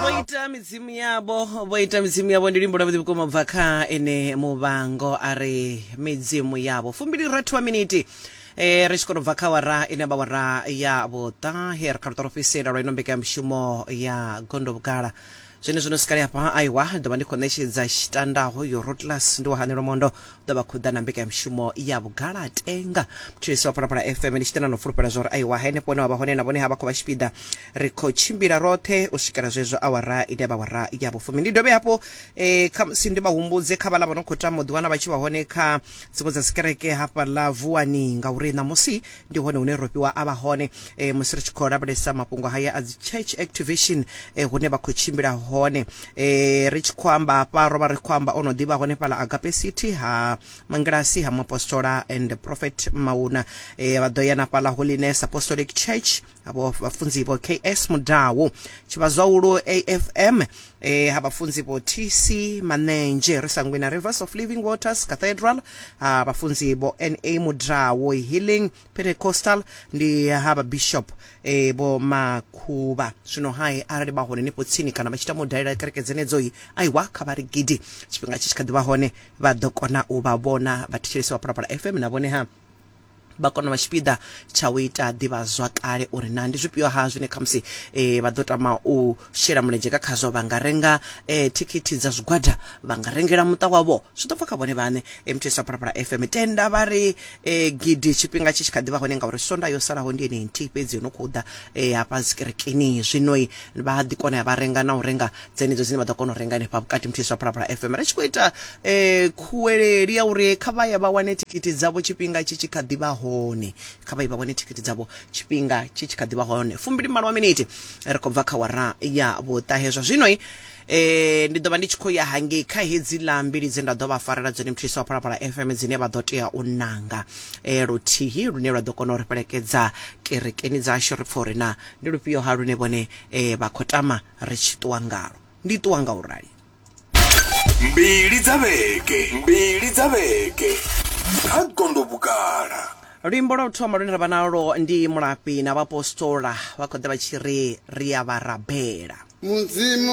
vho ita midzimu yavho vho ita midzimu yavho ndi luimbo lwavhuḓi vhukuma bva kha ene muvhango a re midzimu yavho fumbili rathu wa miniti Eh, ri tshi kona u bva kha wara ine vha wara ya vhuṱahe ri kha luṱa lwo fhisela lwa ino mbekanyamushumo ya gondo vhugala zwine zwino sikali hafha aiwa ḓovha ndi khou ṋetshedza tshitandaho yo rotlas ndi wa hanelo mondo ḓa vha khou ḓa na mbekanyamushumo ya vhugalatenga thetshelesi wa phalaphala fm ndi tshi tenda no fulufhela zwa uri aiwa henefho hune wa vha hone na vhone ha vha khou vha tshipiḓa ri khou tshimbila roṱhe u swikela zwezwo awara ine ya vha awara ya vhufumi ndi dovhe hafho eh, khamusi ndi vha humbudze kha vhala vha no khou tama u ḓiwana vha tshi vha hone kha dziṅwe dza dzikereke hafhaḽa vuwani ngauri ṋamusi ndi hone hune rofhiwa a vha hone e, musi ri tshi khou lavhelesa mafhungo haya a dzi church activation e, hune vha khou tshimbila hone e, ri tshi khou amba hafha ro vha ri khou amba o no ḓivha hone fhala agape city ha mangilasi ha muapostola and prophet mauna e, vha ḓo ya na fhala holiness apostolic church havho vhafunzi vho ks mudau tshivhazwaulo afm e ha vhafunzi vho tc manenzhe ri sangwina rivers of living waters cathedral ha vhafunzi vho na mudrawo healing pentecostal ndi ha vhabishop e vho makhuvha zwino hai arali vha hone nifho tsini kana vha tshi tama u dalela kereke dzenedzoi aiwa kha vha ri gidi tshifhinga tshi tshi kha ḓi vha hone vha ḓo kona u vha vhona vha thetshelesi wa phalaphala fm na vhone ha vha kone u vha tshipiḓa tsha u ita ḓivhazwakale uri na ndi zwifhio-ha zwine khamusi um vha ḓo tama u shela mulenzhe nga khazwo vha nga renga um thikhithi dza zwigwada vha nga rengela muṱa wavho zwi ḓo bva kha vhone vhaṋe muthu isa phalaphala fm tenda vha ri um gidi tshifhinga tshi tshi kha ḓi vha hone ngauri sonda yo salaho ndi ene nthihi fhedzi yo no khou ḓa um hafha zikerekeni zwinoi vha ḓi kona ya vha renga na u renga dzenedzo dzine vha ḓo kona u renga henefha vhukati muthihi zwa phalaphala fm ri tshi khou ita um khuweleli ya uri kha vha ye vha wane thikhithi dzavho tshifhinga tshi tshi kha ḓi vha hone kha vha ye vha wane thikhithi dzavho tshifhinga tshi tshi kha ḓi vha hone fumbili malo wa miniti ri khou bva kha wara ya vhuṱahe zwa zwino um ndi ḓo vha ndi tshi khou ya hangei kha hedzi ḽa mbili dze nda ḓo vha farela dzone muthihi wa phalaphala fm dzine vha ḓo tea u nanga um luthihi lune lwa ḓo kona u ri fhelekedza kerekeni dzashu ri pfha uri na ndi lufhio ha lune vhone um vha khou tama ri tshi ṱuwa ngalo. Ndi ṱuwa nga u rali. Mbili dza vhege, mbili dza vhege kha gondo vhugala. Luimbo lwa u thoma lune ra vha nalwo ndi Mulafhi na vhaapostola vha khou ḓa vha tshi ri ri a vha rabela. Mudzimu